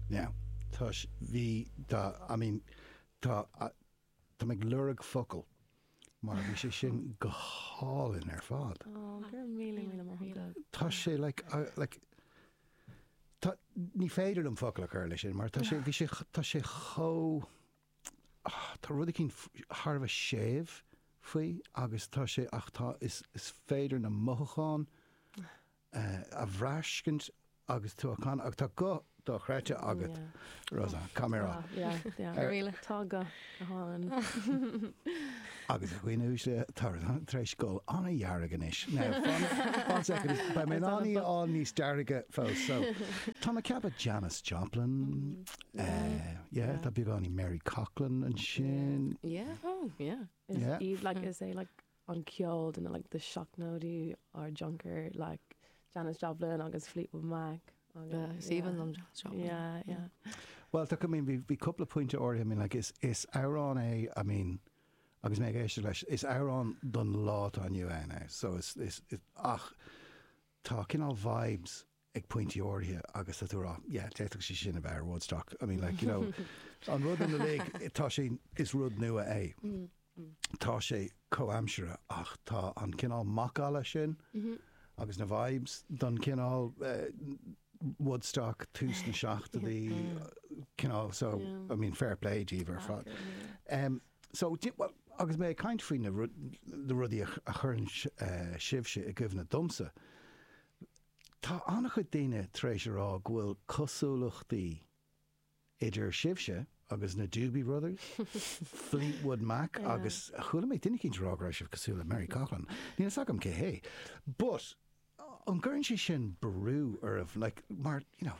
Now, tá sé, bhí, tá, I mean, tá, tá mé ag lorg focal mar bhí sé sin go hálainn ar fad. Ó, go raibh míle, míle maith agat. Tá sé, like, I, like, tá, ní féidir liom focal a chur leis sin mar tá sé, bhí sé, tá sé chomh, ah, tá rud éicín thar a bheith séimh faoi agus tá sé, ach tá, is, is féidir na mothúcháin a bhraistint agus tú ag canadh agus tá guth dochreidte agat Rosann, cá mé rá? Tá guth go hálainn. Agus a dhaoine uaisle atá tar éis dul ana dhearg anois. Beidh mé in ann í a fháil níos dearga fós. Tá na ceapadh Janis Joplin, tá beagáinín Mary Coughlan ansin. Is é an ceol de like na seachtóidí ár dtionchar like Janis Joplin agus Fleetwood Mac agus yeah Even them Janis Joplin yeah yeah. Bhuel tá I mean bhí bhí cúpla pointe áirithe I mean like is is amhrán é I mean agus mé ag éisteacht leis is amhrán don lá atá inniu ann é so is is ach tá cineál vibes ag pointí áirithe agus tá tú ag rá yeah d'fhéadfadh sé sin a bheith ar Woodstock I mean like you know an rud ina lig tá sé is rud nua é tá sé comhaimseartha ach tá an cineál macalla sin agus na vibes don cineál Woodstock tús na seachtóidí cineál so I mean fair play daoibh ar fad em so do you know agus mé ag caint faoi na rudaí a chuireann sibhse i gcuimhne domsa Tá an-chuid daoine tar éis a rá go bhfuil cosúlachtaí idir sibhse agus na Doobie Brothers, Fleetwood Mac agus chuala mé duine eicínt ag rá go raibh sibh cosúil le Mary Coughlan. Níl a fhios agam cé hé. But, an gcuireann sé sin brú oraibh, like, mar, you know,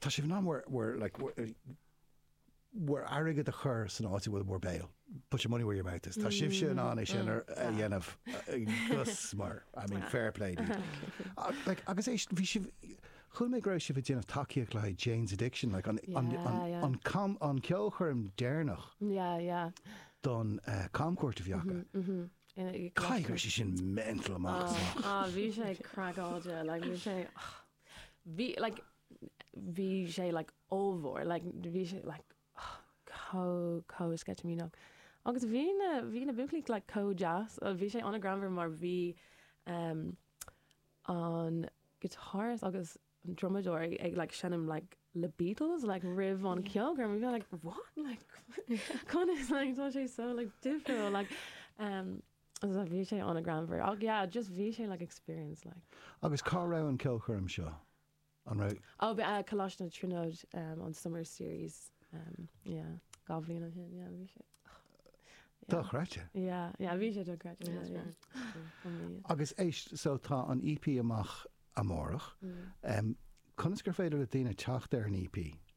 Tá sibh in ann bhur, bhur, like, bhur, bhur n-airgead a chur san áit a bhfuil bhur mbéal, put your money where your mouth is. Tá sibhse in ann é sin ar, a Tá. dhéanamh, agus mar, I mean, Tá. fair play to you. A, like, agus é, bhí sibh, chuala mé go raibh sibh ag déanamh tacaíocht le haghaidh Jane's Addiction, like, an, an, Yeah, an, yeah. an cam, an ceolchoirm deireanach Yeah, yeah. don, eh, camchuairt a bhí acu. In a- Caithfidh go raibh sé sin mental amach is amach. Ah, bhí sé craiceáilte, like, bhí sé, Bhí like bhí sé like ollmhór like bhí sé like oh chomh chomh sceitimíneach agus bhí na bhí na buachaillí like chomh deas oh bhí sé ana greannmhar mar bhí ehm an guitarist agus an drumadóir ag ag like seinm like le Beatles like roimh an cheolchoirm and you're like what like conas like tá sé so like difriúil like ehm. So bhí sé ana ghreannmhar. Ach yeah, just bhí sé like experience like. Agus cá raibh an ceolchoirm seo? An raibh. Oh, b'ea Coláiste na Tríonóide um, an summer series um, yeah, dhá bhliain ó shin, yeah, bhí sé. Dochreidte. Yeah, yeah, bhí sé dochreidte. Yeah, yeah, yeah. Agus é, so tá an EP amach amárach. Mm. Um, conas gur féidir le daoine teacht ar an EP?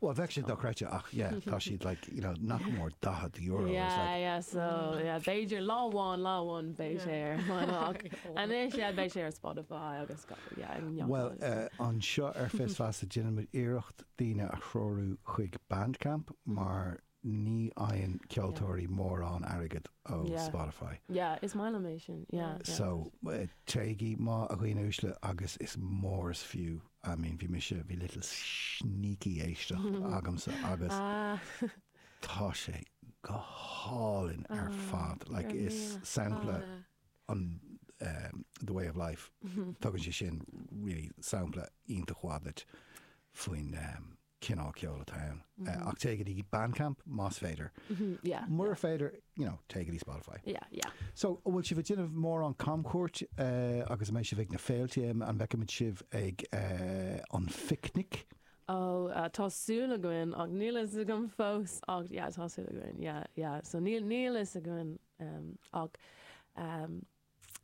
Well bheadh sé dochreidte ach yeah tá siad like you know nach mór €40 or something. Yeah yeah so yeah b'fhéidir lá amháin lá amháin beidh sé ar Bandcamp anois yeah beidh sé ar Spotify agus go yeah ag neochadh Well agus eh, anseo ar Fios Feasa déanaimid iarracht daoine a threorú chuig Bandcamp mar Ní fhaigheann ceoltóirí mórán airgid ó Spotify. Yeah, is maith liom é sin. Yeah, yeah. So, téigí, má a dhaoine uaisle, agus is mór is fiú, I mean, bhí mise, bhí little sneaky éisteacht agamsa agus tá sé go hálainn ar fad. Like, is sampla an The Way of Life, tugann sé sin really sampla iontach maith duit faoin cineál ceoil atá ann ach téigí go dtí Bandcamp más féidir. Mura féidir, you know, téigí go dtí Spotify. So, an bhfuil sibh ag déanamh mórán camchuairt agus an mbeidh sibh ag na féilte? An bhfeicimid sibh ag an phicnic? Ó, tá súil againn ach níl a fhios agam fós ach yeah, tá súil againn yeah, yeah. So, níl a fhios againn ach.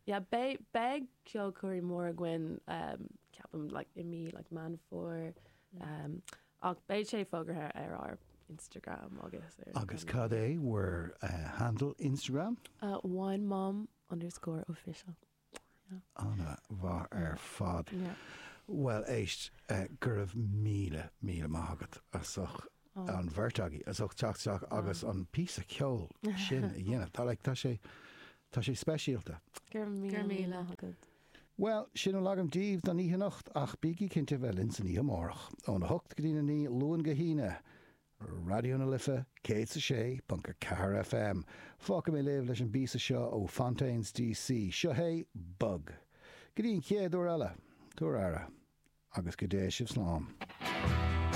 Yeah beidh beidh ceolchoirm mhór againn um ceapaim like i mí like Meán Fómhair um ach beidh sé fógartha ar ár Instagram agus ar Agus cad é bhur eh, handle Instagram? Uh wine mom underscore official yeah. Ana mhaith ar fad. Yeah. Bhuel éist eh, go raibh míle míle maith agat as ucht. Ó. an bheirt agaibh as ucht teacht isteach agus an píosa ceoil sin a dhéanamh. Tá like, tá sé tá sé speisialta. Go raibh Go raibh míle agat. Well, sin a bhfuil agam daoibh don oíche anocht ach bígí cinnte bheith linn san oíche amárach ón 8 go dtí a 9 Luan go hAoine. Raidió na Life 106.4 FM. Fágfaidh mé sibh leis an bpíosa seo ó Fontaines DC. Seo é Bug. Go dtí an chéad uair eile, tugaigí aire agus go dté sibh slán.